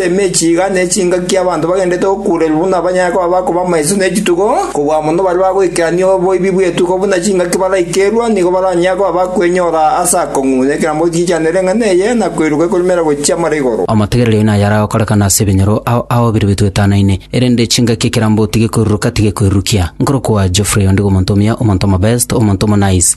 Emechie iga nechingaki y'abanto bagendererete gokuurerwa buna banyare koba bakoba amaiso n'echitugo, kobua mono baria bagoikerania oboibi bw'etuko buna chingaki baraikerwa, nigo baranyare koba bakwenyora ase akong'u, na ekerango gichichanere eng'ana eye, na koiruka ekorumera gochia amara igoro. Amategerero aino ayare agokorekana ase ebinyoro ao aobire bituetanaine, erende chingaki ekeramboti gekoiruruka tigekoirurukia. Nkorokwa Geoffrey ondigo omonto omuya, omonto omobest, omonto omonice.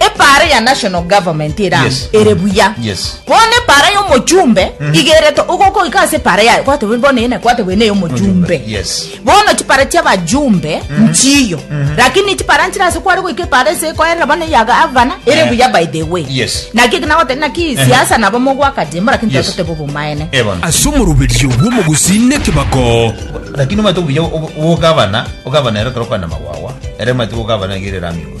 Epaara ya national government ere amo Yes. ere buya Yes. bono epaara y'omochumbe igerete ogokoika ase epaara yaye kwate bwe- bono ene kwate bwene y'omochumbe Yes. bono chipara chiabajumbe nchiyo lakini chipara nchire ase kware goika epaara ase ekoerera bono eya gavana ere Eh. buya by the way Yes. naki ekinagote naki siasa nabo mogwaka jimbo lakini Yes. totote bobomaene Ebona. ase omoruberio bw'omogusi nekebako Lakini omanyete obuya ogabana ogabana ero kero kwana magwawa. Ere omanyete ogabana gerera amigo.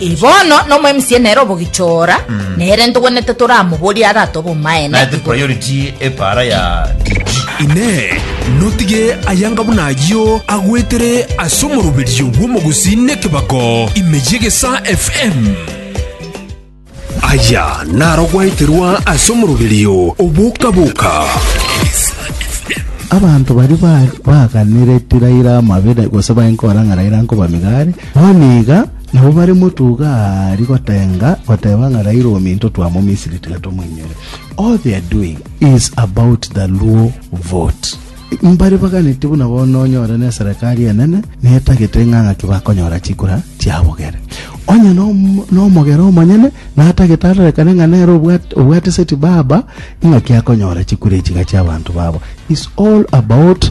Ee, bono nomoemisia nere obogichora, nere ntogwenete toramoborie arate obomaene Naete igoro. priority epaara ya DG. Inee, notige ayanga buna ayio agwetere ase omoroberio bw'omogusi nekebako ime y'egesa FM? Aya naro gwaeterwa ase omoroberio oboka-boka. Abanto baria ba- baaganire ti Raila amabere gose bae nkora ng'a Raila nkoba migari, bono iga Nabo bare motuga aari gotenga, goteba ng'a raira ominto twa mo Misiri tiga tomoinyore. All they are doing is about the Luo vote. Mbare baganeti buna bono onyore ne serekari enene netagete ng'a ng'aki bakonyora chikura chiabogere. Onye nomogera omonyene natagete arorekane ng'a nere obwate seti baba ing'aki akonyora chikura echiga chiabanto babo. Is all about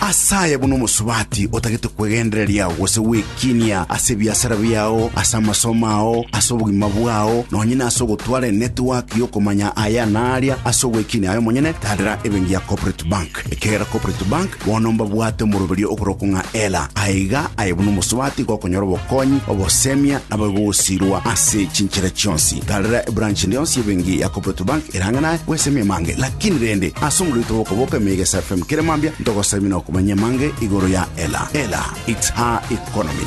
Ase aya buna omosubati otagete kwegendereria gose gwekinia ase ebiasara biao, ase amasomo ao, ase obogima bwao, nonye nase ogotwara enetiwaki y'okomanya aya na aria ase ogwekinia aye omonyene, tadera ebenki ya Corporate Bank. Ekero Cooperative Bank bono mbabwate omoroberio okorokwa ng'a Ela, aye iga aye buna omosubati gokonyora obokonyi, obosemia, nabo igogosirwa ase chinchera chionsi. Karera ebranch ende yonsi y'ebenki ya Cooperative Bank eraanga naye gwesemia amange. Lakini rende, ase omorioto bw'okoboka emeiga ase FM kera mambia, ntogosabie na okomanya amange igoro ya Ela. Ela, it's her economy.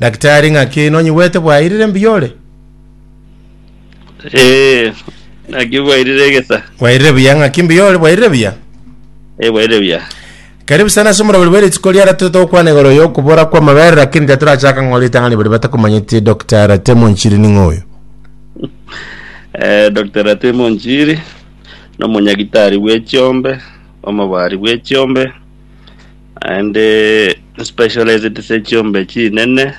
Daktari, ng'aki nonyigwete bwairire mbuya ore? Eh, naki bwairire egesa. Bwairire buya, ng'aki mbuya ore, bwairire buya. Eh, bwairire buya. Karibu sana ase omorobori bwa rituko riara tore togokwana igoro y'okobora kw'amabere lakini tatorachaka ng'a ritang'ani baria batakomanyeti Dr. Ratemo Nchiri ning'o oyo? Eh, Dr. Ratemo Nchiri, nomonyagitari bw'echiombe, omobari bw'echiombe, Naende specialized ase chiombe chinene,